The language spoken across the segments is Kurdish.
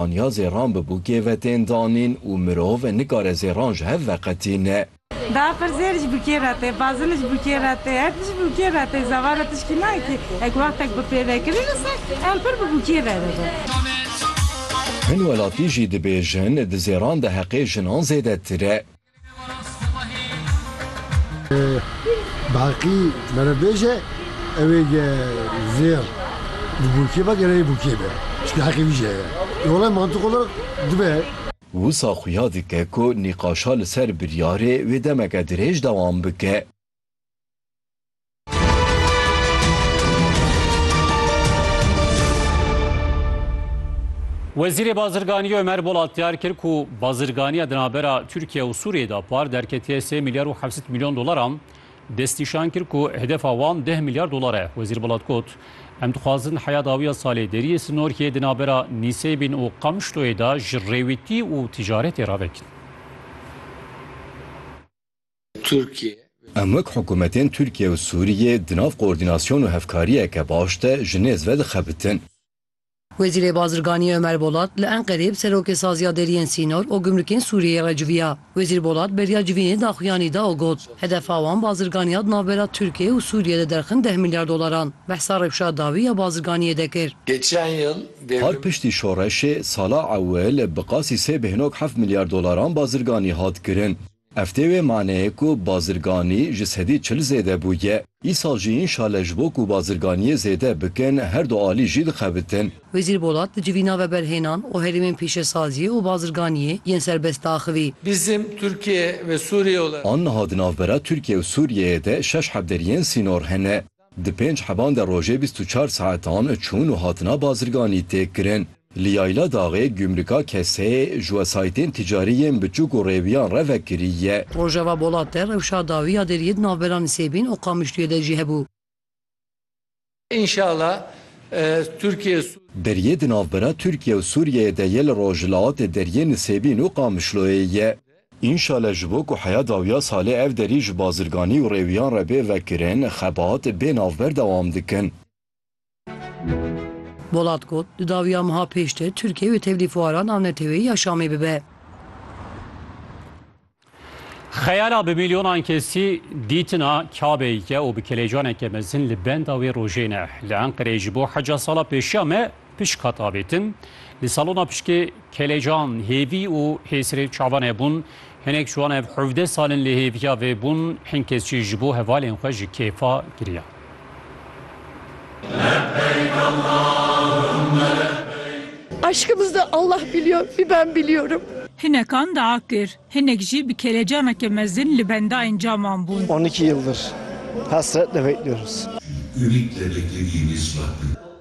Aniya zêran bibû kêve tên danîn û mirov nikare zêran ji hev veqetîne. Da pirsê ji bo kê re tê, bazin ji bo kê re tê, her tişt ji bo kê re tê, zevara tişkî nayê kê e ku wextek bi pêvekirîn re ser em pir bi bo kê re dibe. Hin welatî jî dibêjin di zêran de heqê jinan zêdetir e. Baqî mere bêje ewê zêr di bûkê be gerek bûkê be çikî heqê wî jî heye. Lê welay mantiq olarak dibe. Wisa xuya dike ku nîqaşa li ser biryarê wê demeke dirêj dewam bike. Wezîrê Bazirganiyê Ömer Bolat diyar kir ku bazirganiya di navbera Tirkiye û Sûriyê de par derketiye sê milyar û heft milyon dolaran. Destnîşan kir ku hedefa wan deh milyar dolar e. Wezîr Bolat got, Em dixwazin heya dawiya salê deriyê sinorkiyê di navbera Nîseybîn û Qamişloyê de ji rêwîtî û ticaretê re vekin. Tirkiye. Em wek hikûmetên Tirkiye û Sûriyê di nav koordînasyon û hevkariyeke baş de ji nêz ve dixebitin. Wezîrê Bazirganiyê Ömer Bolat li Enqereyê bi Serokê Saziya Deriyên Sînor û Gumrukên Sûriyeyê re civiya. Wezîr Bolat beriya civînê daxuyanî da û got, Hedefa wan bazirganiya di navbera Tirkiye û Sûriyê de derxin deh milyar dolaran. Behsa rewşa dawî ya bazirganiyê de kir. Geçen yil. Har piştî şoreşê sala ewil bi qasî sê bêhnog heft milyar dolaran bazirganî hat kirin. Ev tê wê maneyê ku bazirganî ji sedî çil zêde bûye. Îsal jî înşale ji bo ku bazirganiyê zêde bikin her du alî jî dixebitin. Wezîr Bolat di civîna veberhênan û herêmên pîşesaziyê û bazirganiyê yên serbest de axivî. Bizim Türkiye ve Suriye olarak. Aniha di navbera Tirkiye û Sûriyeyê de şeş hevderiyên sînor hene. Di pênc heban de rojê bîst û çar saetan çûn û hatina bazirganî tê kirin. Li Yayla Daxê Gumrika Keseyê ji wesayîtên ticarî yên biçûk û rêwiyan re vekirî ye. Rojava Bolat de rewşa dawî ya deriyê di navbera Nisêbîn û Qamişlûyê de jî hebû. Înşala Tirkiye û. Deriyê di navbera Tirkiye û Sûriyeyê de yê li rojhilatê deriyê Nisêbîn û Qamişloyê ye. Înşale ji bo ku heya dawiya salê ev derî ji bazirganî û rêwiyan re bê vekirin, xebat bê navber dewam dikin. Bolat got, Di dawiya meha pêş de Tirkiye wê tevlî fuara navneteweyî ya Şamê bibe. Xeyala bi milyonan kesî dîtina Kabeyê ye û bi kelecaneke mezin li benda wê rojê ne. Li Enqereyê ji bo heca sala pêşiya me Pişk hat avêtin. Li salona pişkê kelecan, hêvî û hêsirê çavan hebûn. Hinek ji wan ev hevdeh sal in li hêviya vê bûn. Hin kes jî ji bo hevalên xwe ji kêfa giriyan. Lebeyk Allahümme lebeyk. Aşkımızı Allah biliyor, bir ben biliyorum. Hinekan daa kir, hinek jî bi kelecaneke mezin li bendayên caman bûn. On iki yıldır hasretle bekliyoruz. Ümitle beklediğimiz vakit.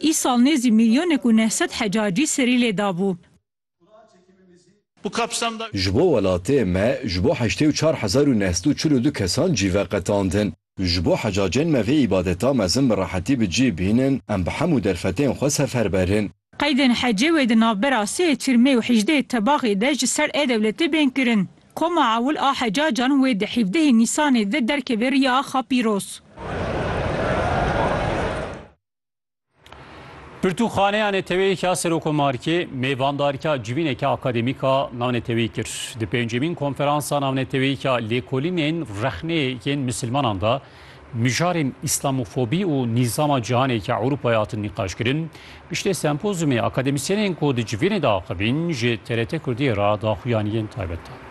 Îsal nêzî mîlyonek û neh sed hecacî serî lê dabû. Ji bo welatê me ji bo heştê û çar hezar û neh sed û çil û du kesan cî ve qetandin. Ji bo hecacên me vê îbadeta mezin bi rehetî bi cî bînin, em bi hemû derfetên xwe sefer berin. Qeydên hecê wê di navbera sê Çirmê û hejdê Tebaxê de ji ser ê dewletê bên kirin. Koma ewil a hecacan wê di hîvdehê Nîsanê de derkeve riya axa pîroz. Pirtûxaneya neteweyek ya Serokomarkê mêvandarika civîneke akademîka navneteweyî kir. Di pêncemîn konferansa navneteweyîka lêkolînên rexneyên misilmanan de mijarên îslamofobî û nîzama cîhaneke Ewropayê hatin nîqaşkirin. Piştê sempozyumê akademisyenên ku di civînê de axivîn ji TRT Kurdiyê re daxuyaniyên taybet dan.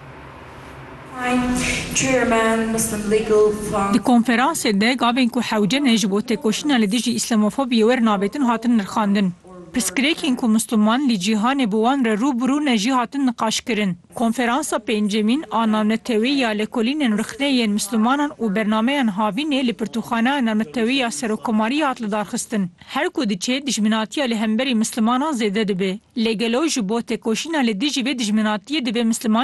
Di konferansê de gavên ku hewce ne ji bo têkoşîna li dijî îslamofobiyê wer navêtin hatin nirxandin. Pirsgirêkên ku misliman li cîhanê bi wan re rû bi rû ne jî hatin niqaşkirin. Konferansa pêncemîn a navnetewî ya Lekolînên Rixnê yên Mislimanan û Bernameyan Havînê li Pirtûkxaneya Navnetewî ya Serokkomariyê hat lidarxistin. Her ku diçê dijminatiya li hemberî mislimanan zêde dibe. Lê gelo ji bo têkoşîna li dijî vê dijminatiyê divê misliman